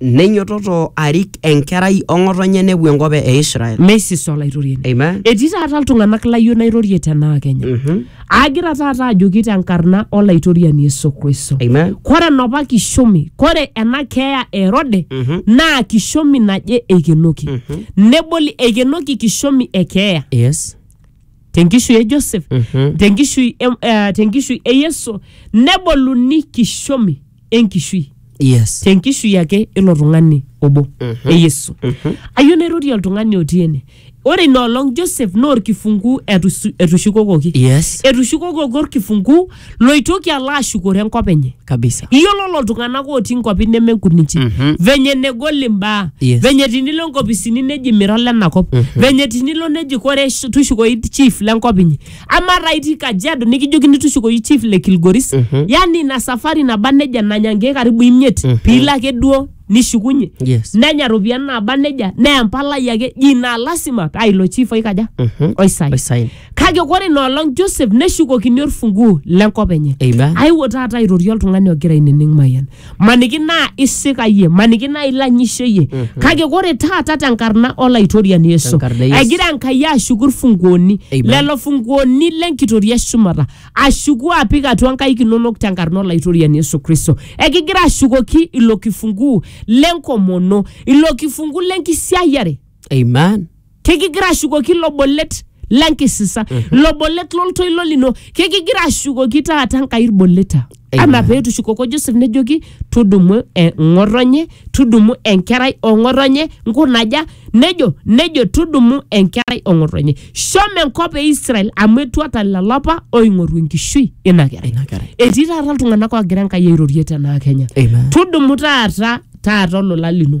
Neinyototo arik enkerai o ng'otonye nepuo enkop e Israel. meisis olaitoriani Amen. etii taata iltung'anak layieu nairorie tenaa kenya Mhm. agira taata ajoki tenkarna olaitoriani yesu kristo Amen. kore enapa kishomi kore ena keeya e erode Mhm. naa kishomi naje eikenoki neboli eikenoki kishomi e keeya Yes. tenkishui e joseph Mhm. tenkishui e- eh, tenkishui e yesu neboluni kishomi enkishui yes tenkishui ake ilo tung'ani obo Mhm. e yesu Mhm. ayieu nairorie oltung'ani otii ene ore ina olong joseph naa orkifunguu etusu- etushukokoki yes etushukokoki orkifunguu loitoki alo ashukore enkop enye kabisa iyiolo lelo tung'anak otii nkuapi nemenkuninchi Mhm. venye negol imbaa Yes. venye tinilo nkopisini neji mira lenakop Mhm. venye tinilo neji kore sh- tushukoi chief lenkop inyi amaa taa itii kajiado nikijokini tushukoyu chief le kilgoris Mhm. yani ina safari naba neja nanya nkeek karibu imiet Mhm. piilo ake duo nishukunye yes nenya ropiyiani naba neja neya mpalai ake ji naa lasima paa ilo chief oikaja Mhm. oisai osain kake kore inoolong joseph neshukokini orfunguo lenkop enye amen aiwo taata airorie oltung'ani ogira ainining mayian maniki naa isikayie maniki naa ilanyisheyie kake kore taata tenkarna olaitoriani yesu Tenkarna e Yesu. egira enkai ashuku irfunguoni Amen. lelo funguoni lenkitoria eshumata ashuku apik atua nkaik inonok tenkarna olaitoriani yesu kristo ekigira ashukoki ilo kifunguu lenkomono ilo kifunguu lenkisiayiare Amen. kekigira ashukoki ilo bolet lenkisisa ilo bolet loltoilo lino kekigira ashukoki taata nkai ilboleta Amen. anaa peetushukoko joseph nejoki tudumu eng'otonye tudumu enkerai ong'otonye nkunaja nejo nejo tudumu enkerai ong'otonye shomo enkop e israel amu etuata lelo apa oing'oru enkishui ina kerai Ina kerai. etii taata iltung'anak oogira enkai airorie tenaa kenya Amen. tudumu taata taata olola lino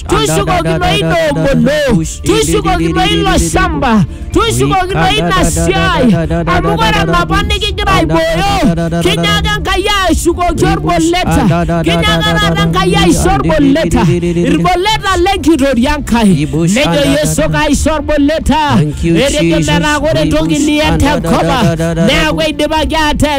tushukokino inongono tushukokino ilo shamba tushukokino ina siai amu kore napa nikigira aibooyo kinyaaka nkai ashukoki orboleta kinyaaka taata nkai aisho orboleta irboleta lenkitoria nkai nejo yeso kaisho orboleta Thank you, etejo Jesus. metaa kore entoki Ibush, niyen tenkop ang, andadadadada. neeku eidipaki atees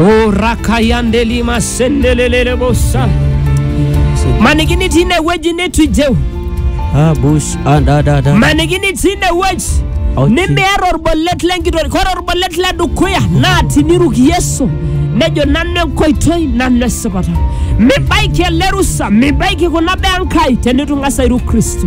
o rakayandeli masendelelele bosa manikini tine weji netwijeu Abush and da da da. manikini tine weji Ouchi. nimeera orbolet lenkitori kore orbolet le dukuya naa tiniruk yesu nejo nanu enkoitoi nanu esipata mibaiki ele rusa mibaiki kuna baa enkai tenitung'asa airuk kristo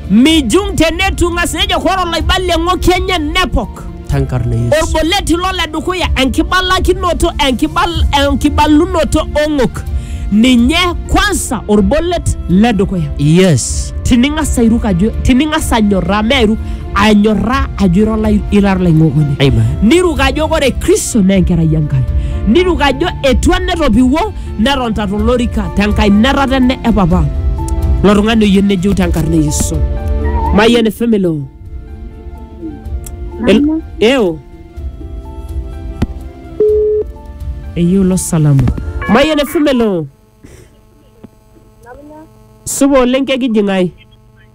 Mijung tenetu ng'as nejo kore olaibalie ng'oki enye nepok. Tankarna Yesu. Olboleti lo le dukuya enkibalakinoto enkibal, enkibalunoto ong'ok. Ninye kwansa olbolet le dukuya. Yes. Tining'as airuk ajo tining'as anyorraa me airuk anyorraa ajo ira olai- ira olaing'okoni. Amen. Niruk ajo kore Kristo naa enkerai Enkai. Niruk ajo etua netopiwuo netonta tolorika tenkainata tene e papa lo tung'ani oyieu nejeu tenkarna e yesu mayian efemelo Mama, eo eyieu lo salamu mayian efemelo supa oleng kekijing'ai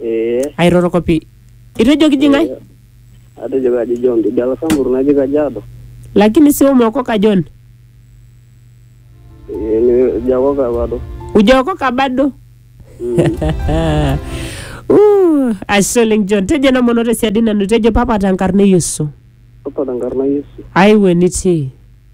Ee. airoroko pi itu ejoki ji ng'ae Atejo kaji John Tidala Sambur naji Kajiado. lakini si umeokoka John Ee, ni- Jakoka bado. ujaokoka bado Mm. Uh, ashe oleng John tejo namono tesiadi nanu tejo papa tenkarna e Yesu Papa tenkarna Yesu. aiwe nitii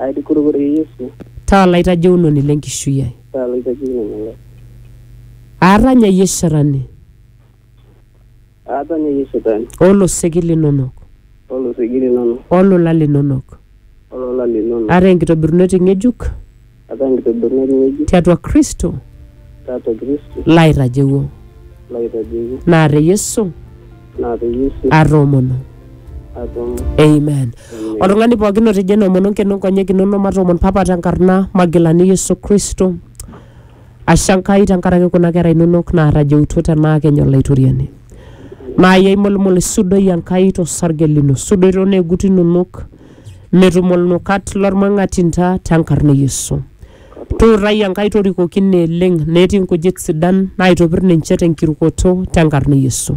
Aitukurukore Yesu, Taa olaitajeunoni le nkishui ai. taa olaitajeunoni lai. Aatanyayie shetani. Aatanyayie shetani. O loseki linonok. O loseki linonok. O lola linonok. O lola linonok. Ataa enkitobirunoti ng'ejuk. Ataa enkitobirunoti ng'ejuk. Tiatua Kristo. Tiatua Kristo. Laitajeuo. Laitajeuo. Naa te Yesu. naa peyie sii atoomono atum amen oltung'ani pookin otejo enoomono nkeno nkonyek inono matoomon papa tenkarna magilani yesu kristo ashe enkai tenkaraki kuna kera inonok naatajeutuo tenaa kenya olaitoriani naai aimulumul isudoi enkai tosarge lino sudoi tooneegut inonok metum olnukat lormang'atinta tenkarna e yesu Tuutai Enkai torikoki neeleng netii nkujit sidan naaitopir ninche tenkirukoto tenkarna e Yesu.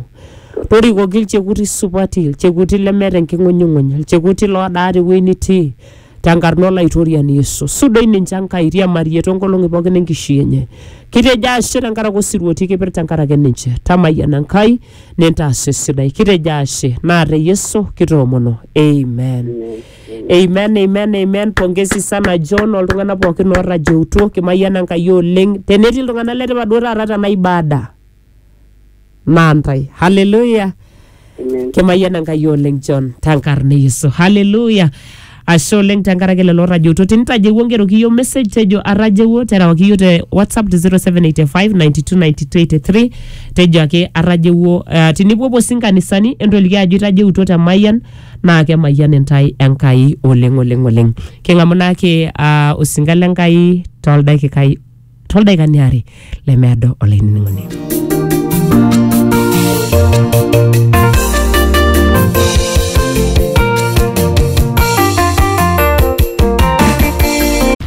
Torikoki ilchekuti supati, ilchekuti lemeeta enking'unyung'uny, ilchekuti loodaa tewueji nitii tenkarna Olaitoriani Yesu. Sudoi ninche Enkai, iriamarie toonkolong'i pooki enkishui enye. Kitejo ashe tenkaraki osirua otii kipir tenkaraki ninche. Tamayiana Enkai nintaas esidai. Kitejo ashe naa te Yesu kitoomono. Amen. Amen, amen, amen. Pongezi sana John oltung'anak pookin oorrajeutuo kimayian Enkai oleng. Tenetii iltung'anak le tipat duo taata tena ibada naa ntae. Hallelujah. Amen. Kimayian Enkai oleng John tenkarna e Yesu. Hallelujah. Ashe oleng tenkaraki lelo oorrajeutuo. Tenitajewuo ngeroki iyiok message tejo arrajewuo terewaki iyiok te WhatsApp te 0785 92 92 83 tejo ake arrajewuo. Uh, tinipuopuo sii nkanisani entoliki ajo itajeutuo te Mayian naa kemayian intae Enkai oleng oleng oleng. King'amu naake ah, osinka le Nkai toldakikai toldaikani aare lemeado olainining'oni.